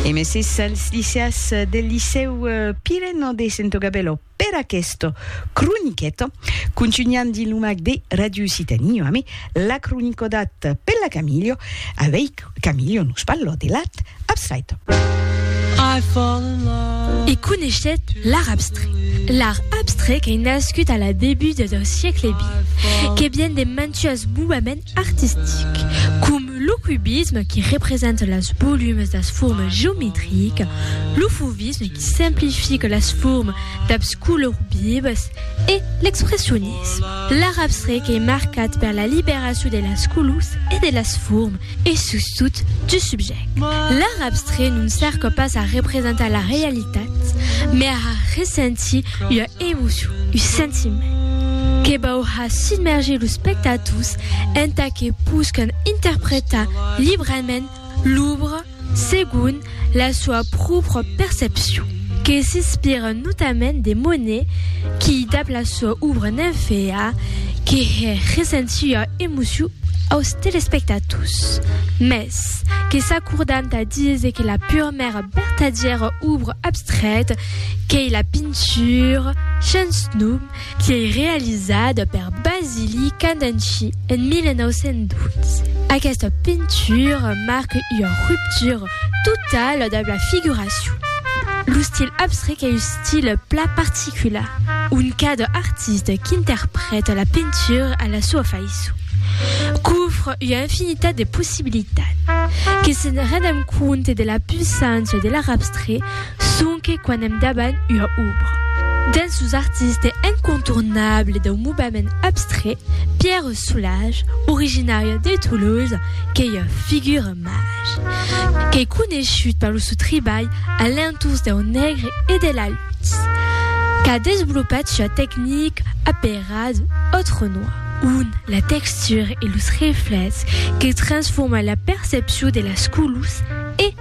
E meses als liceas del Licèu Pireno de Santogabèlo per aquesta croniqueta. Contunhan dins lo mac de Ràdio Occitània amé la cronicodat per la Camilio. Avei Camilio nos parlò de l'art abstrait. E coneishèt l'art abstrait. L'art abstrait qu'ei nascut a la debuda dau siecle xx, que vien de mantuas movements artistics, com. lo cubisme qui representa las volumes das formes geometricas, lo fauvisme qui simplifica las formes dabs colors vivas e l'expressionisme, l'art abstret qu'ei marcat per la liberacion de las colors e de las formes e sustot du subject. L'art abstret non cerca pas a representar la realitat, mai a har ressentir ua emocion, un sentiment, que vau har submerger los spectators entà que poscan interpretar librament l'òbra segon la soa pròpra percepcion, que s'inspiran notament de Monet qui, dab la soa òbra Nymphéa, que hè recent sua emocion aus telespectators, mès que s'acordan tà díser que la purmèra vertadièra òbra abstrèta qu'ei la pintura, sens nom, Qu'ei realizada per Basili Candanci en 1912. Aquesta pintura marque ua ruptura totala dab la figuracion. Lo stil abstrèct ei un stil plan particular, ont cada artista qu'interprèta la pintura a la soa faiçon, qu'ofre ua infinitat de possibilitats. Que se'n rendam compte de la puissància de l'art abstrèct, Sonque quan èm davant ua òbra d'un sos artistes incontournables dau movement abstrait, Pierre Soulages, originària de Tolosa, qu'ei ua figura màger qu'ei coneishut per lo sò tribalh a l'entorns dau negre e de la lutz, qu'a desvolopat sua tecnica aperada Autre Noir, ont la textura e los reflèchs que transforma la percepcion de las colors e.